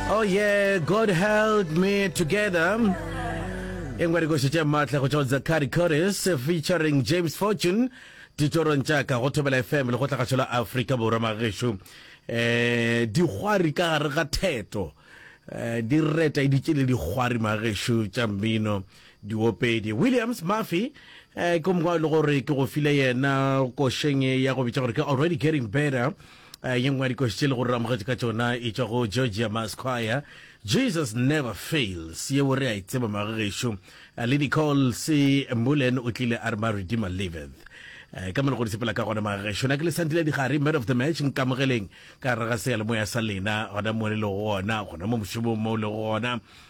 Oh yeah, God held me together. E ngwe dikoši tše maatla go tšwa Zakari Chorus featuring James Fortune ditorong tša ka go thobela fm le go tlagašo la afrika borwa magešo um eh, dikgwari ka gare ga theto um di reta e ditše le dikgwari magešo tša mmino diopedi williams murphy um eh, ke mongwe le gore ke go file yena košeng ya go bitša gore ke already getting better Eh, ye nngwe ya dikoši tše le gore re amogetše ka tšona e tšwa go georgia masquire jesus never fails yeo re a e tseba magagešo eh, le dicol se mbulen o tlile a re ma redeemer liveth eh, ka mone go di sepela ka gona magagešo na ke le santile digare man of the match nkamogeleng ka raga seyalemoya sa lena gona mo le lego gona gona mo mošomong mo le go gona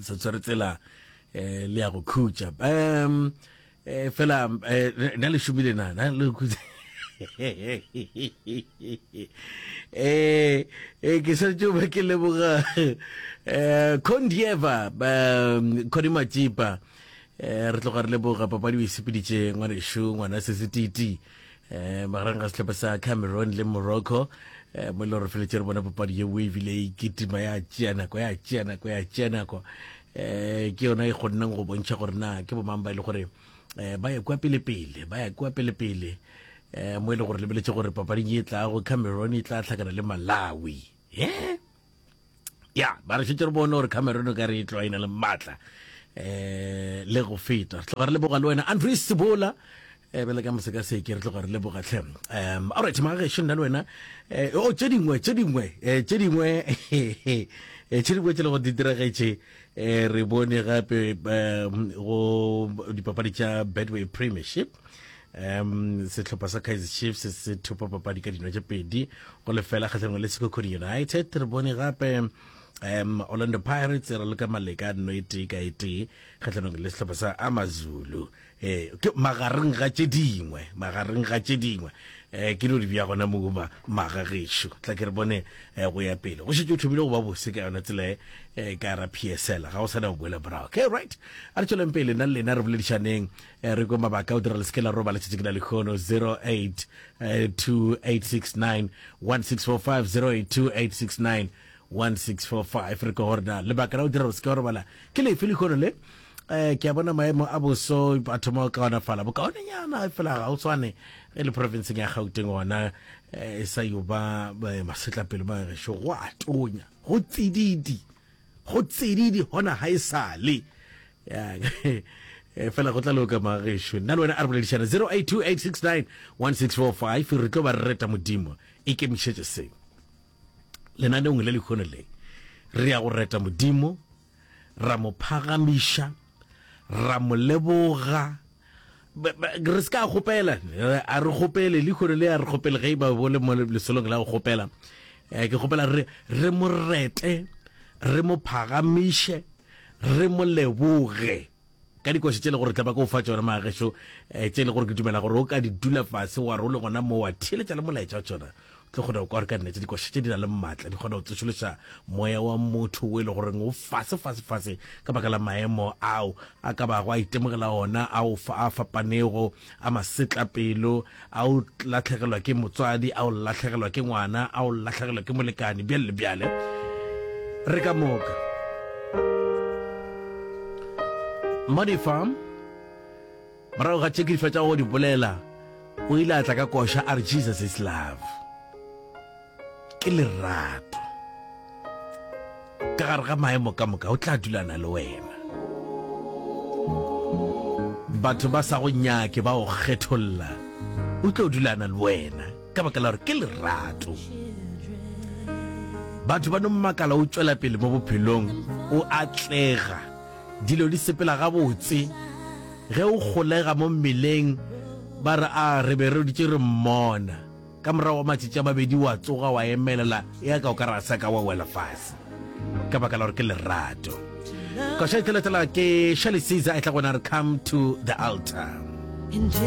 se tsere tsela eh le ya go khutša um eh fela eh, na le šomile na na le khutša eh eh ke sa tšo ba ke leboga eh condieva um khodimatsipa eh re tloga re leboga papadi o e sepeditše ngwanešu ngwana se setiti eh magareng ga setlhopha sa cameroon le morocco eh mo le gore feletse re bona papadi ye wave le e kitima ya tšea nako ya tšea nako ya tšea nako eh ke yona e kgonneng go bontšha gore na ke bomang ba e le gore eh ba ye kwa pele pele ba ya kwa pele pele eh mo e le gore lebeletse gore papading e tlago cameroon e tla tlhakana le malawi eh ya ba re šetse re bone gore cameron o ka re e tloa e na le maatla um le go feta re tloga re leboga le wena andrew sebola eh bele ka moseka se ke re tloga re leboga tlhe um alright magageše nna le wena eh, o oh, tše dingwe tše dingwe eh, tše dingwe eh, tše dingwe tše le go di diregetše um re bone gape um go dipapadi tša bedway premiership um sehlopha sa kaizer chiefs se thupa papadi ka dino tše pedi go lefela kgatlhanong le sekokodi united re bone gape um orlando pirates e raloka maleka no e tee ka e tee kgatlhanong le sehlopha sa amazulu um ke magareng ga tše dingwe magareng ga tše dingwe um ke no di bja gona mouma maga gešo tla ke re bone um go ya pele go šetse o thomile go ba bose ka yona tsela e ka ra psl ga o sa na go boela morago okay right a re tšweleng pele nna le lena re boledišaneng E re ko mabaka o dira le seke la roba letšatši ke na lekgono 0828691645 re ko gorena lebaka la o dira gore seke wa robala ke lefe lekgono le um ke a bona maemo a boso a thoma o kaonafala bokaonenyana fela ga o tshwane ge le profenseng ya gauteng ona um e sa yo ba eh, masetlapelo ba gešo go a tonya go tsididi Go tsididi hona ha e sa le. Yang fela go tla loka mga gešo. Nna le wena a re boledišana 0828691645 re tlo ba reta Modimo. Ikemišetše se. Lenaneong le lekhono le re ya go reta Modimo ra mo phagamiša. ra mo leboga re se ka kgopela a re kgopele lehono le a re kgopele ge ba bo le mo lesolong la go kgopela eh, ke kgopela re re mo rete re mo phagamiše re mo leboge ka dikoša tše le gore tla ba ko fa tsona maagešo eh, tše le gore ke dumela gore o ka di dula fase wa role gona mo wa theletša le molaetša wa tsona tlo kgona go kwa gore ka nnete dikoša tše di na le maatla di kgona go tsošološa moya wa motho o e le goreng o fase fase fase ka baka la maemo ao a ka bago a itemogela ona a o fa a fapanego a masetlapelo a o latlhegelwa ke motswadi a o latlhegelwa ke ngwana a o latlhegelwa ke molekane bjale le bjale re ka moka modifa Morago ga tše ke di fetšago go di bolela, o ile a tla ka koša a re, Jesus is love. Ke lerato. Ka gare ga maemo ka moka, o tla dulana le wena. Batho ba sa go nyake ba go kgetholla, o tlo dulana le wena ka baka la gore ke lerato. Batho ba no mmakala o tšwela pele mo bophelong, o atlega. dilo di sepela gabotse ge o kgolega mo mmeleng, ba re, A re be re dutše re mmona. Ka morago ga matšatši a mabedi o a tsoga, o a emelela, eaka o ka re ga se a ka wa wela fase, ka baka la gore ke lerato. Koša e tla latela ke Shirley Caesar e tla go na re Come to the Altar.